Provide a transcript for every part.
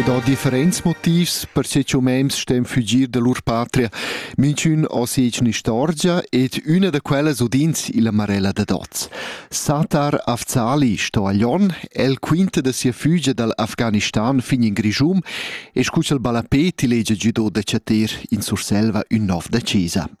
Quei dà differents motivs per che umems stem fugir da lur patria. Minchün ho sech un'istorgia ed üna da quellas udins illa Marella da Doz. Satar Afzali sto a Lyon, el quinta da sia fügia dal Afghanistan fin in Grischum e scu ch'el balla ti legia giudò da chater in Surselva ün nov da Cesa.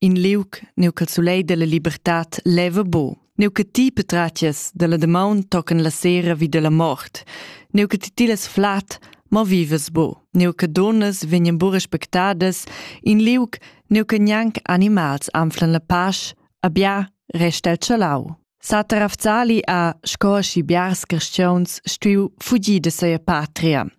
in liug neu ch'el sulei della libertad leva bu. Neu che ti petratias della damaun tocan la sera vi della mort. Neu che ti tilas flat, ma vivas bu. Neu che donas vegnan bu respectadas, in liug neu che gnanc animals anflan la pasch, abia resta el chalau. Satar Afzali ha, sco schi biars cristians, stuiu fugir de seia patria.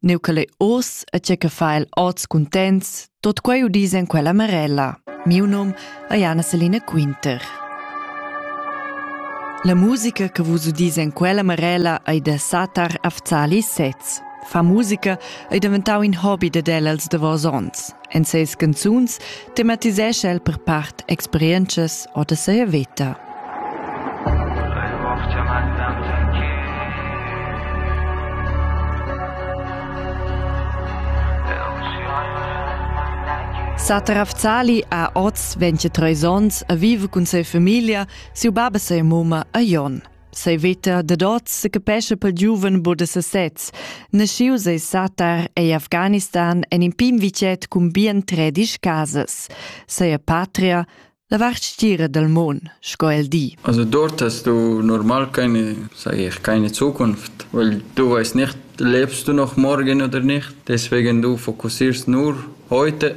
Neu che lei oz e tge che fa el oz cuntents, tot quei udis en quella marella. Miu num è Anna Selina Quinter. La musica che vus udis en quella marella ei da Satar Afzali Sez. Fa musica ei daventau in hobby de el els davos onns. En ses canzuns Tematisescha el per part experientschas or da sia veta. Sater Afzali ha oz 23 onns a viver cun sia famiglia, siu bab e sia mumma a Jon. Sei veta dad oz secapescha pel giuven bod da sesez. Naschiu sei Satar ei Afghanistan en in pim vicet cun bien tredisch casas. Sei patria, la vart stira dal mon, sco el di. Also dort hast du normal keine, sag ich, keine Zukunft, weil du weißt nicht, lebst du noch morgen oder nicht. Deswegen du fokussierst nur heute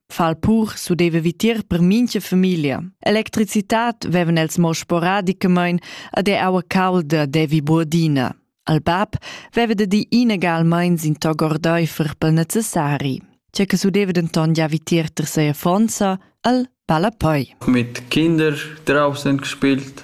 Fal pur sudeva vitier per mincha famiglia. Electricitat vevan els mo sporadicamain ad er aua calda devi buordina. Al bab veva da di inegalmain sin tog ordaifer pel necessari. C'è che sudeva denton già vitier ter sei affonza al palapoi. Mit Kinder draußen gespielt,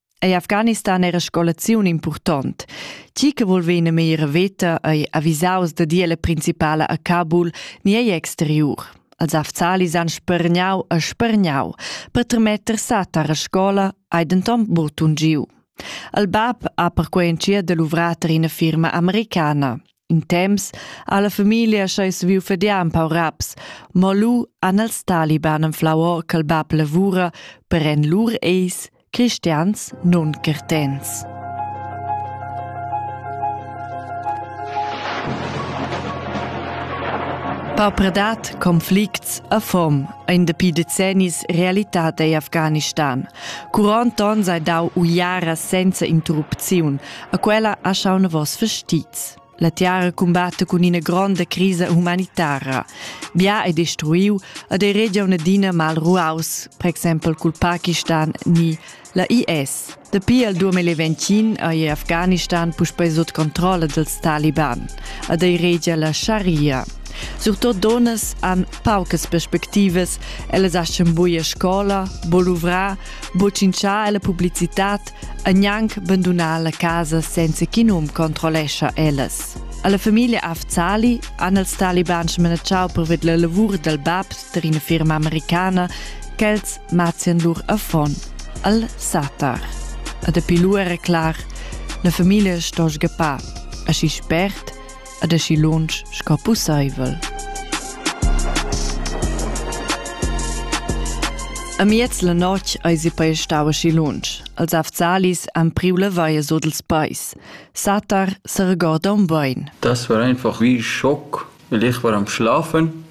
Ei Afghanistan era scolaziun impurtont. Ti che vul vener meira veta ei avisaus da dir la principala a Kabul ni ei exteriur. Els afzalis han spergnau e spergnau per termetter satar a scola hai denton butun giu. Il bab ha perquei entschiet da luvrar per ina firma americana. In temps ha la famiglia schei saviu fadiar un pau raps, mo lu han els taliban enflau or ch'il bab lavura per en lur eis Cristians nun curtents. Paupredad, conflicts, affom ein dapi decennis realitad ei Afghanistan. Curant onn sei dau uiara senza interrupziun, a quella ha schau vos vestits. La tiara cumbatta cun ina gronda crisa humanitara. Bia è destruiu ed ei regia un'adina mal ruaus, per exempel cul Pakistan ni la IS. Dapi al 2020 ei Afghanistan puspei sut controlla dals Taliban ed ei regia la Sharia. Surtut donnas han paucas perspectivas, ellas aschen buia scola, boluvrar Boccinciar la publicitad e gnanc bandunar la casa senza ch'in um controllescha ellas. Alla famiglia Afzali han els talibans manachau per la lavur dal bab tar ina firma americana ch'els mazzian lur affon al Satar. E dapi lu era clar, la famiglia sto sgappar, aschi spert ad aschi lunsch sco pusseivel. Amiez la notg eis i pei stau aschi lunsch. Els afzalis han priu la vaia sut ils peis. Satar seregorda un bein. Das war einfach wie Schock, weil ich war am Schlafen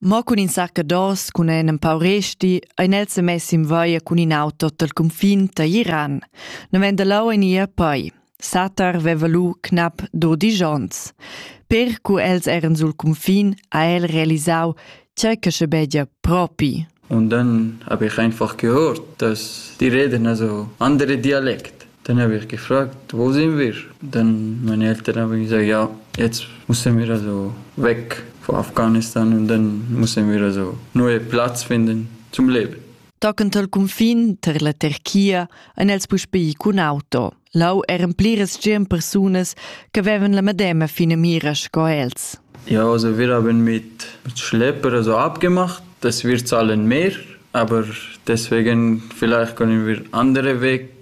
Mo cun in saccados cun en empau resti ein els semessi in vaia cun in auto dal confin da Iran. Non vend lau en ir poi. Satar veva lu knap dodisch onns. Per cu els eran sul confin ha el realisau tgei che schabegia propi. Und dann habe ich einfach gehört, dass die reden also andere Dialekt. Tenervìr che frà dovess invers dën maniera tenervüra esa gia jetzt musse mir also weg von Afghanistan und dann musse mir also neue Platz finden zum Leben. Tocant al cunfin tar la Terchia han els puspè ì cun auto. Lau eran pliras tschient persunas che avevan la medema finamira sco els. Ja, also wir haben mit, mit Schlepper also abgemacht. Das wird zahlen mehr, aber deswegen vielleicht können wir andere Weg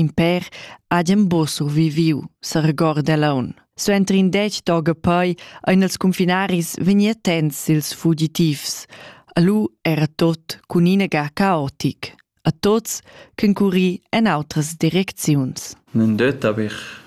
In pèr hagien buca surviviu, seregorda Laun. Suenter in dec toga poi ein els cunfinaris vegni attents sils fugitivs. Alu era tot cun ina ga caotic. A tots ch'encuri en outras direcziuns. Nun det aber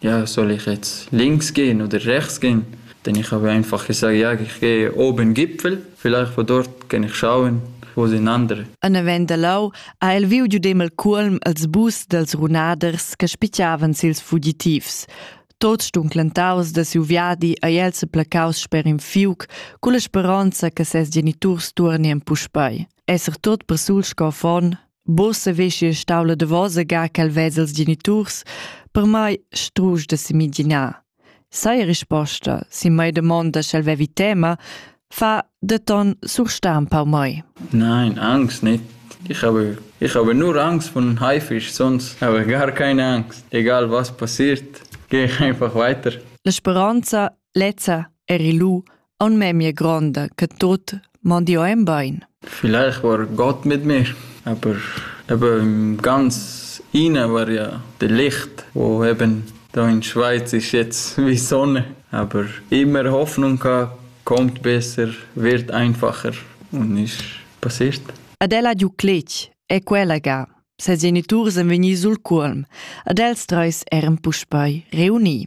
Ja soll ich jetzt links gehen oder rechts gehen? Denn ich habe einfach gesagt, ja, ich gehe oben Gipfel, vielleicht von dort kann ich schauen, wo sind andere. An avend da lau ha el viu giudem el cuolm als bus dels runaders che spichavan sils fugitivs. Tots stunclentaus da siu viadi ei el se placaus sper in fiuc, con la speronza che ses geniturs turnien puspei. Esser tot per sul scoffon, Bossa veschi stavla davosa ga quel vez els geniturs, per mai strusch da semiginar. Sai risposta, si mai domanda sch'el vevi tema, fa de ton surstampa um mai. Nein, Angst nicht. Ich habe, ich habe nur Angst von Haifisch, sonst habe ich gar keine Angst. Egal was passiert, gehe ich einfach weiter. La speranza Lezza eri lu aunc memia gronda che tut mandiu en bein. Vielleicht war Gott mit mir, aber eben ganz innen war ja das Licht, wo eben da in Schweiz ist jetzt wie Sonne. Aber immer Hoffnung gehabt, kommt besser, wird einfacher und ist passiert. Adela Duclitch è quella ga. Ses geniturs èn vegni sul cuolm. Ad els treis eran puspei reuni.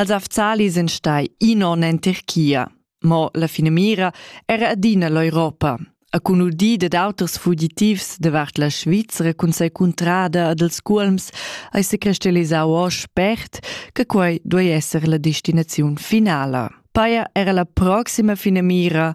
Als Afzali sind stai in onn en Tirchia. Mo la finamira era adina l'Europa. A cun udì dad auters fugitivs davart la Svizzera cun sei cuntrada ad els culms ei se crystallisau o spert che quei duei esser la destinaziun finala. Paia era la proxima finamira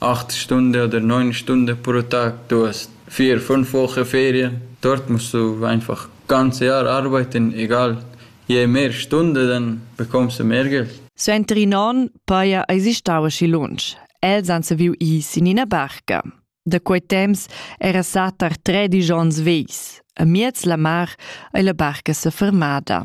Acht stunda oder neun Stunden pro Tag du hast vier, fünf Wochen Ferien. Dort musst du einfach ganze Jahr arbeiten, egal. Je mehr Stunden, dann bekommst du mehr Geld. Suenter in onn paja eisi stau aschi lunsch. Els han saviu ir sin ina barca. Da quei temps era satar tredisch onns vegls. A miez la mar ei la barca sefermada.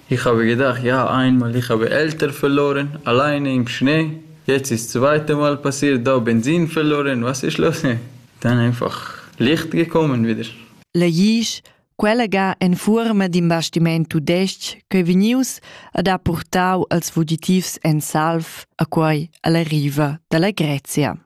Ich habe gedacht, ja, einmal, ich habe Eltern verloren, alleine im Schnee. Jetzt ist das zweite Mal passiert, da Benzin verloren, was ist los? Dann einfach Licht gekommen wieder. Legisch, quella ga en fuorma d'in bastiment tudestg ch'ei vegnius ad ha purtau als fugitivs en salv a quei alla riva dalla Grezia.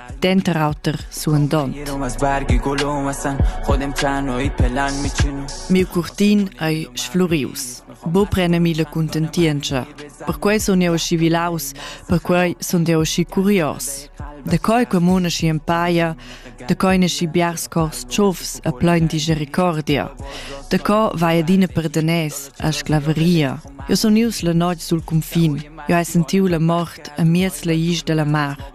denter auter suandont. Miu curtin ei sflurius. Bo prenemi la contentientscha. Perquei sun jeu aschi vilaus, perquei sun jeu aschi curios. Da coi comuna schi empaia, da coi nesci biars cors tschofs a plein disgericordia. Da co vai adina perdanes a sclaveria. Jo sun ius la notg sul confin. Jo hai sentiu la mort a miez la isch della mar.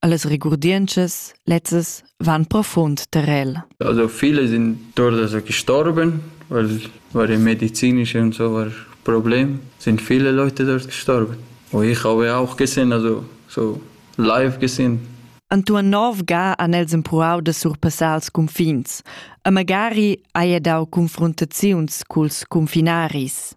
Allas regurdientschas lezzas van profund tar el. Also viele sind durch das gestorben, weil, weil im medizinischen und so war Problem, sind viele Leute dort gestorben. Und ich habe auch gesehen, also so live gesehen. Antoine Nov ga han els empruau da surpassar els confins, e magari haja dau confrontaziuns culs confinaris.